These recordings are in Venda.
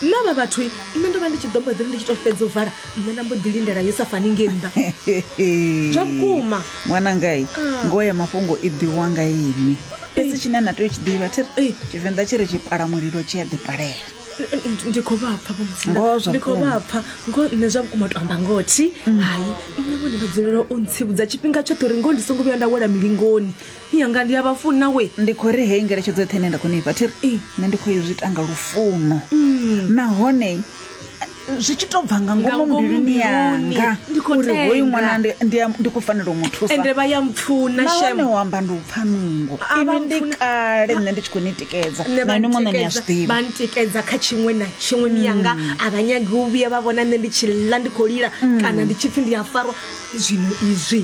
nṋe vha vhathu nṋe ndo vha ndi tshi ḓo mboḓiri ndi tshi to fhedza u vala nṋe na mbo ḓi lindela yo sa fani nge nnḓa zwa vhukuma ṅwanangai ah. ngoho ya mafhungo i ḓiwa nga ini fhedzi tshine na tea u tshi ḓivha thi tshivenḓa tshi ri tshi pala mulilo tshi a ḓipalela ndi khou vhapfa ndi khou vhapfa ngo nṋe zwa vhukuma to amba ngothi mm. hai nṋe vhone vha dzulela u ntsivhudza tshifhinga tshoṱhe uri ngoho ndi songo vhuya nda wela milingoni Phi yanga ndi a vha funa we. Ndi khou ri heyi ngeletshedzo yoṱhe ine nda khou ni fha thi ri nṋe ndi khou i zwi ita nga lufuno nahone zwi tshi tou bva nga Nga ngomu ngomu mbiluni mbiluni, yanga ndi khou uri hoyu tenda. ṅwana ndi- ndi a- ndi khou fanela u mu thusa ende vha ya mpfuna nahone shem u amba ndi u pfa nungo A vha inwi ndi mpfuni- kale nṋe ndi tshi khou ni tikedza nṋe na vha inwi muṋe ni a ntikedza- zwi vha ḓivha ntikedza kha tshiṅwe na tshiṅwe miyanga a vha nyagi u vhuya vha vhona nṋe ndi tshi ḽa ndi khou lila kana ndi tshi pfhi ndi a farwa zwino izwi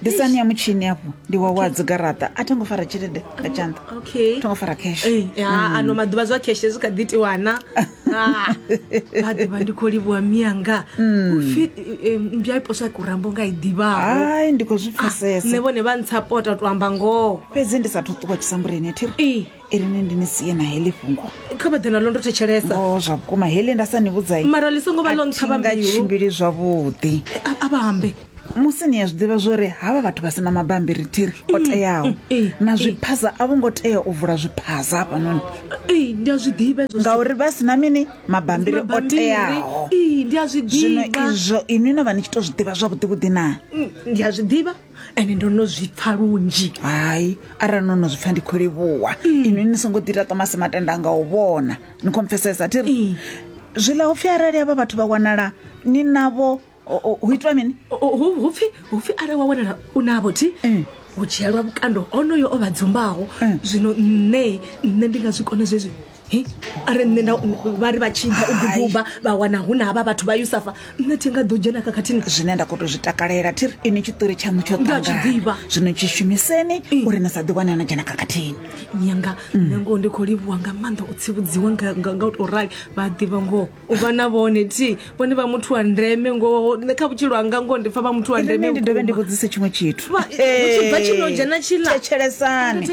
ndi sani ya mutshini afho ndi wa wa dzigaraṱa a tho ngo fara tshelede nga tshanḓa okay tho ngo fara cash Eh, ya, Mm. ano maḓuvha zwa kheshe zwi kha ḓi tiwana Ah, maḓuvha ndi khou livhuwa miyanga Mm. upfi eh, mbya iposwa kurambo nga i ḓivhaho ai ndi khou zwi pfesesa nṋe vhone vha ntsapota u to amba ngoho fhedzi ndi sa thu ṱuwa tshisambuleni thiri i ri ni ndi ni sie na heḽi fhungo kha vha ḓe naḽo ndo thetshelesa o zwa vhukuma heḽi nda sa ni vhudzai mara ḽi songo vha ḽo nṱhavha nga mbilu tshimbili zwavhuḓi A- a vha ambe musi ni a zwi ḓivha zwori havha vhathu vha sina mabambiri thiri o teaho mm, eh, na eh. zwiphaza a vho ngo tea u vula zwiphaza hafhanoni Ee, ndi a zwi ḓivha hezwo zwithu. ngauri vha sina mini mabambiri o Mabambiri. teaho Ee, ndi a zwi zwino ḓivha izwo inwi no vha ni tshi to zwi ḓivha zwavhuḓivhuḓi na Mm, ndi a zwi ḓivha ende ndo no zwi pfa lunzhi hai arali no no zwi pfa ndi khou livhuwa mm. inwi ni songo ḓi ita tomasi matenda nga u vhona ni khou mpfesesa thi ri mm. zwi ḽa upfhi arali avha vhathu vha wanala ni navho hu itwa mini hupfi hupfi arali wa wanala u navho thi mm. u dzhielwa vhukando onoyo o vha dzumbaho zwino nṋe nṋe ndi nga zwi kone zwezwi He, are nṋe nda vha ri vha tshi ḓa u duduba vha wana hu na havha vhathu vha yusafa nṋe thi nga ḓo dzhena khakhathini zwine nda khou tou zwi takalela thi ri ini tshiṱori tshaṋu tsho Ndi a tshi ṱangana ḓivha. zwino tshi shumiseni uri ni sa ḓi wane no dzhena khakhathini yanga nṋe ngoho ndi khou livhuwa nga maanḓa u tsivhudziwa nga nga- nga u tou rali vha a ḓivha ngoho u vha na vhone thi vhone vha muthu wa ndeme ngoho nṋe kha vhutshilo hanga ngoho ndi pfa vha muthu wa ndeme eh, ndi dovhe ndi vhudzise tshiṅwe tshithu tshibva eh, tshino dzhena tshila thetshelesani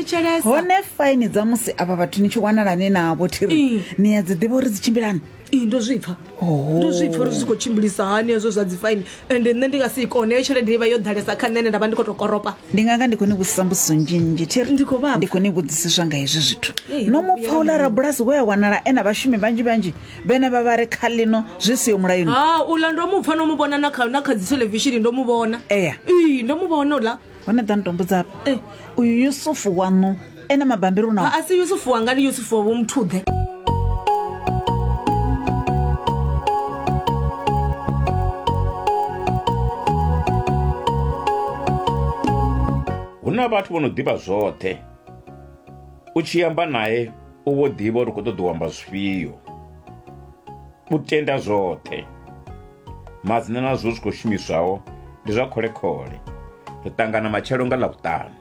hone faini dza musi avha vhathu ni tshi wanalani navho thiri eh. ni ya dzi ḓivha uri dzi tshimbilani ndo zwipfa oh. ndo zwipfa uri zwi khou tshimbilisa hani hezwo zwa dzi faini ende nṋe ndi nga si i kone heyo tshelede ivha yo ḓalesa kha nṋe ene nda vha ndi khou tou koropa ndi nga nga ndi khou ni vhudzisa mbudziso nzhinzhi thiri Ndi khou vhavha. ndi khou ni vhudzisiswa nga hezwi zwithu Ee, no mu pfa uḽa rabulasi we a wanala e na vhashumi vhanzhi vhanzhi vhene vha vha ri kha ḽino zwi siho mulayoni ha uḽa ndo mu pfa no mu vhona na kha na kha dzi theḽevishini ndo mu vhona Eya. ii ndo mu vhona uḽa hone ḓa nitombudza afha e uyu yusufu waṋu ene mabambiri unao a si yusufu wanga ndi yusufu wa vhomuthuḓe hu na vhathu vho no ḓivha zwoṱhe u tshi amba naye u vho ḓivha uri u khou ṱoḓa u amba zwifhio u tenda zwoṱhe Madzina na zwo zwi khou shumiswaho ndi zwa khole-khole. Ri ṱangana matshelo nga Ḽavhuṱanu.